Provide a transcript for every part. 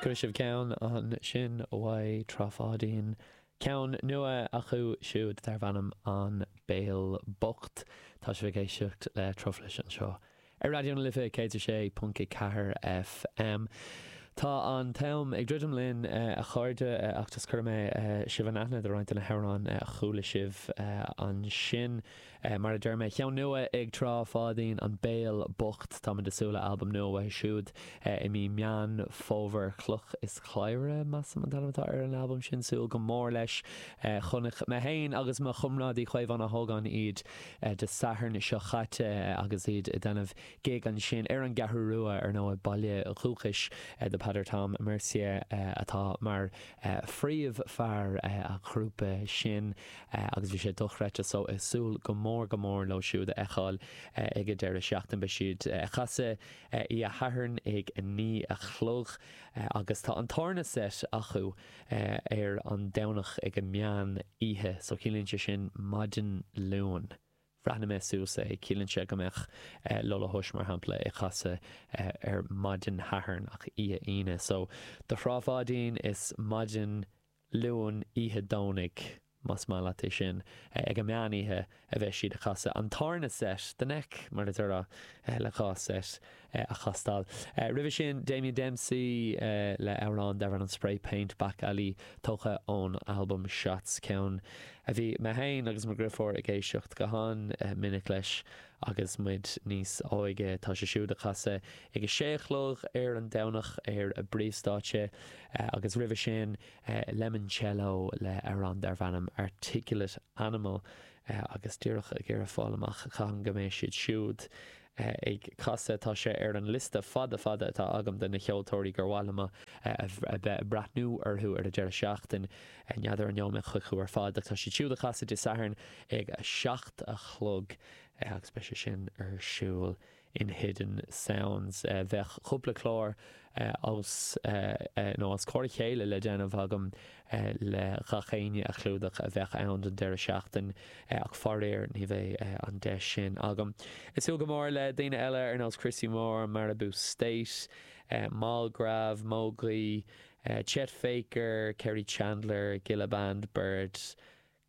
Cuirfidh sibh ceann ansin uaidh Trá Pháidín. Ceann nua acu siúd darb ainm An Béal Bocht. Tá sibh ag éisteacht le Truflais anseo ar Raidió na Life 106.4 FM. Tá an t-am ag druidim linn a chairde agus cuirfidh mé sibh in aithne do roinnt de na hamhráin a chuala sibh ansin. Mar a deir mé, cheann nua ag Trá Pháidín, An Béal Bocht. Táimid ag súil le albam nua uathu siúd i mí Meán Fómhair. Cloch is Claí, measaim, an t-ainm atá ar an albam sin. Súil go mór leis. Chonaic mé féin agus mo chomrádaí Caomhán Ó hÓgáin iad Dé Sathairn seo chaite agus iad ag déanamh gig ansin ar an gCeathrú Rua, ar ndóigh, baile dúchais do Peadar Tom Mercier atá mar phríomh fear an ghrúpa sin. agus bhí sé dochreidte so ag súil go mór go mór leo siúd a fheiceáil ag an deireadh seachtaine. Beidh siad ag casadh oíche Shathairn ag a naoi a chlog agus tá an tarna set acu ar an Domhnach ag a meán oíche so ciallaíonn sé sin maidin Luain bhreathnaigh mé suas é, ciallaíonn sé go mbeadh Lullahush mar shampla ag casadh ar maidin Shathairn ach oíche Aoine so do Thrá Pháidín is maidin Luain oíche Domhnaigh, más maith leat é sin, ag an meán oíche a bheas siad ag casadh, an tarna set, the neck mar a déarfá, le dhá set a chastáil. Roimhe sin Damien Dempsey le amhrán darbh ainm Spray Paint, Back Alley, tógtha ón albam Shots, ceann a bhí mé féin agus mo dhriofúr ag éisteacht go han minic leis. Agus muid níos óige, tá sé siúd ag casadh ag a sé a chlog ar an Domhnach ar an bpríomhstáitse, agus roimhe sin Lemoncello le amhrán darb ainm Articulate Animal, agus díreach ag iarraidh fáil amach cathain go mbeidh siad siúd ag casadh. Tá sé ar an liosta fada fada atá agam de na ceoltóirí gur mhaith liom a bheith ag breathnú orthu ar an deireadh seachtain. N'fheadar an ngabhfaimid chucu ar fad ach tá siad siúd ag casadh Dé Sathairn ag a seacht a chlog agus beidh sé sin ar siúl in Hidden Sounds. Bheadh cúpla clár os nó os comhair a chéile le déanamh agam le gach éinne a chlúdach a bheidh ann don deireadh seachtain ach faraor ní bheidh an deis sin agam. Ag súil go mór le daoine eile ar nós Christy Moore, Maribou State, Mall Grab, Mogwai Chet Faker, Kerri Chandler, Gilla Band, BIIRD,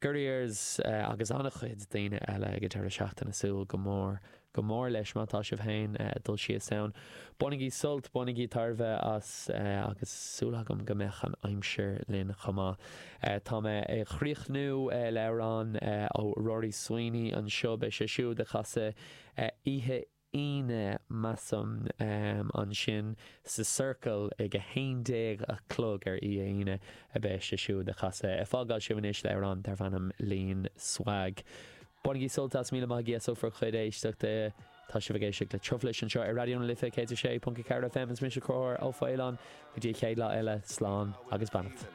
Gurriers agus an-chuid daoine eile ag an deireadh seachtaine súil go mór, go mór leis má tá sibh féin ag dul síos ann. Bainigí sult, bainigí tairbhe as agus súil agam go mbeadh an aimsir linn chomh maith. Tá mé ag críochnú le amhrán ó Rory Sweeney anseo, beidh sé siúd ag casadh oíche Aoine, measaim. Ansin sa Circle ag a haon déag a chlog oíche Aoine a bheas sé siúd ag casadh. Ag fágáil sibh anois le amhrán darb ainm Lean Swag. Bainigí sult as, míle maith agaibh as bhur chuid éisteachta. Tá sibh ag éisteacht le Truflais anseo ar Raidió na Life 106.4 FM. Is mise Conchubhar Ó Faoláin. Go dtí an chéad lá eile, slán agus beannacht.